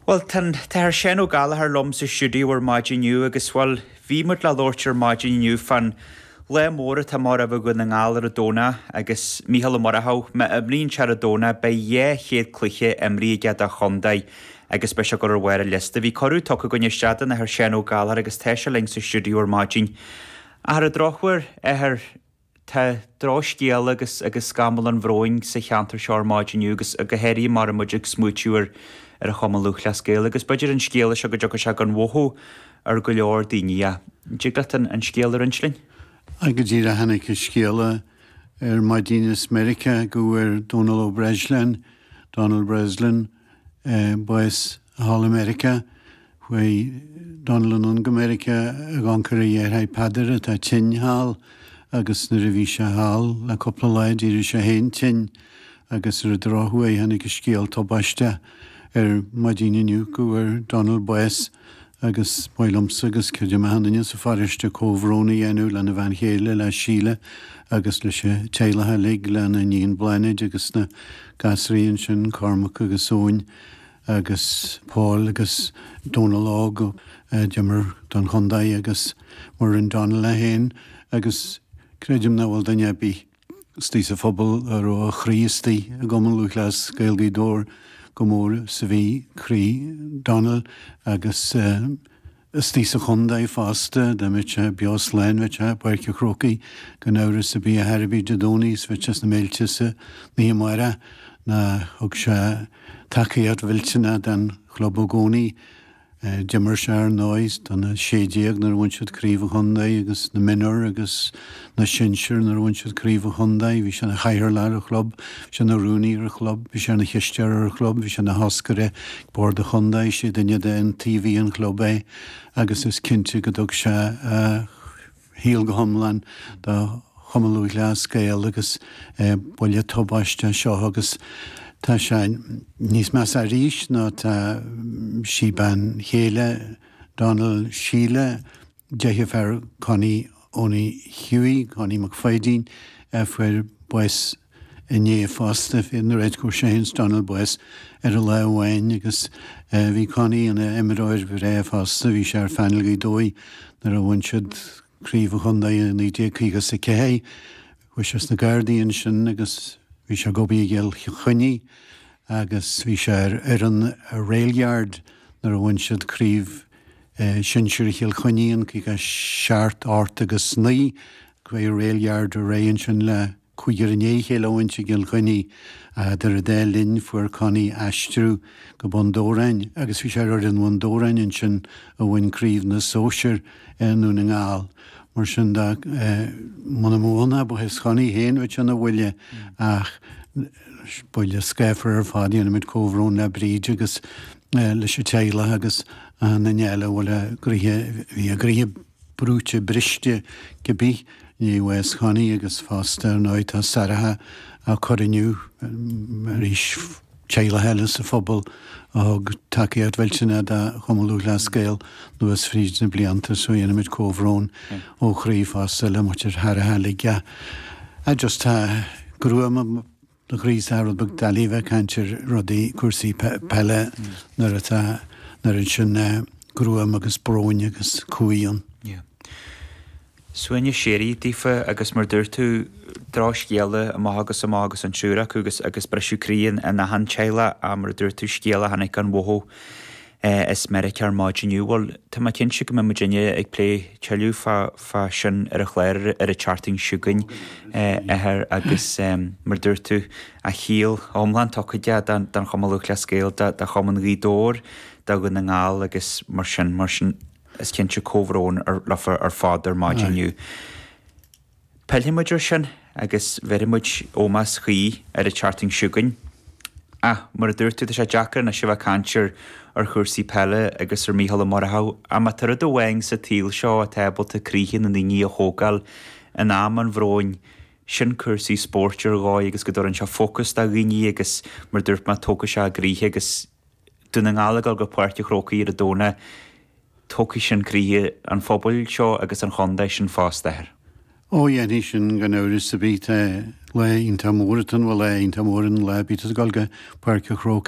Bhuel, tá an tAthair Seán Ó Gallchóir liom sa stiúideo ar maidin inniu agus, bhuel, bhí muid le labhairt ar maidin inniu fán lá mór atá amach roimh Dhún na nGall ar an Domhnach agus Mícheál Ó Murchú, má imríonn sé ar an Domhnach, beidh dhá chéad cluiche imeartha aige dá chontae agus beidh sé ag gabháil ar bharr an liosta. Bhí cuireadh tugtha againn isteach don Athair Seán Ó Gallchóir agus tá sé linn sa stiúideo ar maidin. Ach ar an drochuair, a Athair. Tá drochscéal agus agus scamall an bhróin sa cheantar seo ar maidin inniu agus go háirithe mar a bhfuil muid ag smaoitiú ar ar an Chumann Lúthchleas Gael agus b'fhéidir an scéala seo go dtiocfaidh sé gan mhothú ar go leor daoine. An dtig leat an an scéal a roinnt linn? Á, go díreach a tháinig an scéala ar maidin as Meiriceá go bhfuair Dónal Ó Breisleáin, Donald Breslin, bás thall i Meiriceá, chuaigh Donal anonn go Meiriceá ag amharc ar a dheartháir Peadar atá tinn thall agus nuair a bhí sé thall le cúpla lá d'éirigh sé féin tinn agus ar an drochuair tháinig an scéal tubaisteach ar maidín inniu go bhfuair Donal bás. Agus ba mhaith liomsa, agus creidim achan duine sa pharóiste, comhbhrón a dhéanamh lena bhean chéile, le Sheila, agus leis an teaghlach uilig, lena iníon Bláthnaid agus na gasraí ansin, Cormac agus Eoin agus Paul agus Donal Óg, a d'imir don chontae, agus mar a rinn Donal é féin, agus creidim nach bhfuil duine ar bith. Istigh sa phobal a raibh a chroí istigh i gCumann Lúthchleas Gael Ghaoth Dobhair chomh mór is a bhí croí Donald agus istigh sa chontae fosta, dá mbeadh sé beo slán, bheadh sé i bPáirc an Chrócaigh gan amhras ar bith ar bith Dé Domhnaigh is bheadh sé sna Méilte san oíche amárach nó thug sé tacaíocht mhillteanach don chlub i gcónaí. D'imir sé, ar ndóigh, sna 'sé-déag nuair a bhain siad Craobh an Chontae agus sna Mionúir agus sna Sinsir nuair a bhain siad Craobh an Chontae. Bhí sé ina chathaoirleach ar an chlub, bhí sé ina rúnaí ar an chlub, bhí sé ina chisteoir ar an chlub, bhí sé ina thoscaire ag Bord an Chontae, is é duine d'iontaobhaithe an chlub é agus is cinnte go dtug sé a shaol go hiomlán do Chumann Lúthchleas Gael agus buille tubaisteach seo agus tá sé níos measa arís nó tá sí bean chéile Donald, Sheila, deirfiúr Connie Owenie Hughie, Connie Mac Pháidín, a fuair bás Inné fosta, fuair Connie é féin is Donal bás ar an lá amháin agus bhí Connie ina imreoir bhreá fosta, bhí sé ar phainéal Ghaoth Dobhair nuair a bhain siad craobh an chontae i 1954. Chuaigh sé sna Gardaí ansin agus bhí sé ag obair i gCill Chainnigh agus bhí sé ar fhoireann Railyard nuair a bhain siad craobh shinsir Chill Chainnigh in 57, 8 agus 9. Chuaigh Railyard ar aghaidh ansin le. Cúigear i ndiaidh a chéile a bhaint gan Chonnie ach idir an dá linn, fuair Connie aistriú go Bun Dobhráin agus bhí sé ar fhoireann Bhun Dobhráin ansin a bhain craobh na sóisear i nDún na nGall. Mar sin de, muna mbeadh ann ach bás Chonnie féin bheadh sé ina bhuille ach buille scáfar ar fad. Déanaimid comhbhrón le Bríd agus leis an teaghlach agus achan nduine eile a bhfuil a gcroíthe, bhí a gcroíthe. brúite briste de bhíthin bhás Chonnie agus fosta ar ndóigh tá Sarah á cur inniu arís, teaghlach eile sa phobal a thug tacaíocht mhillteanach do Chumann Lúthchleas Gael anuas fríd na blianta, so déanaimid comhbhrón ó chroí fosta le muintir Sarah, le Jah. Ah just tá gruaim. tá sé rud beag doiligh a bheith ag caint ar rudaí, cúrsaí peile nuair atá, an oiread sin gruaime agus bróin agus cumhaidh ann. Yeah. Suaimhneas síoraí daofa agus mar a dúirt tú, drochscéala amach agus amach agus an triúr acu agus, agus briseadh croí in achan teaghlach, mar a dúirt tú, scéala a tháinig gan mhothú. as Meiriceá ar maidin inniu. Bhuel, tá mé cinnte go mbeidh muidinne ag plé tuilleadh fá sin ar an chlár ar an tseachtain seo chugainn, ar, agus mar a dúirt tú, a shaol iomlán tugtha aige don Chumann Lúthchleas Gael, do Chumann Ghaoth Dobhair, do Dhún na nGall agus mar sin, mar sin is cinnte comhbhrón leofa ar fad ar maidin inniu. Pillfidh muid air sin agus bhéarfaidh muid ómós cuí ar an tseachtain seo chugainn. Ach, mar a dúirt tú, tá sé deacair anois a bheith ag caint ar chúrsaí peile agus ar Mhícheál Ó Murchú ach má tá rud amháin sa tsaol seo atá ábalta croíthe na ndaoine a thógáil in am an bhróin, sin cúrsaí spóirt ar dhóigh agus go dtabharann sé fócas do dhaoine agus, mar a dúirt mé, tógfaidh sé a gcroíthe agus. Dún na nGall ag dul go Páirc a' Chrócaigh ar an Domhnach, tógfaidh sin croíthe an phobail seo agus an chontae sin fosta, ar. Ó, dhéanfaidh sin, gan amhras, bíodh lá iontach mór atá ann, bhuel lá iontach mór ann lá ar bith ag dul go Páirc a' Chrócaigh.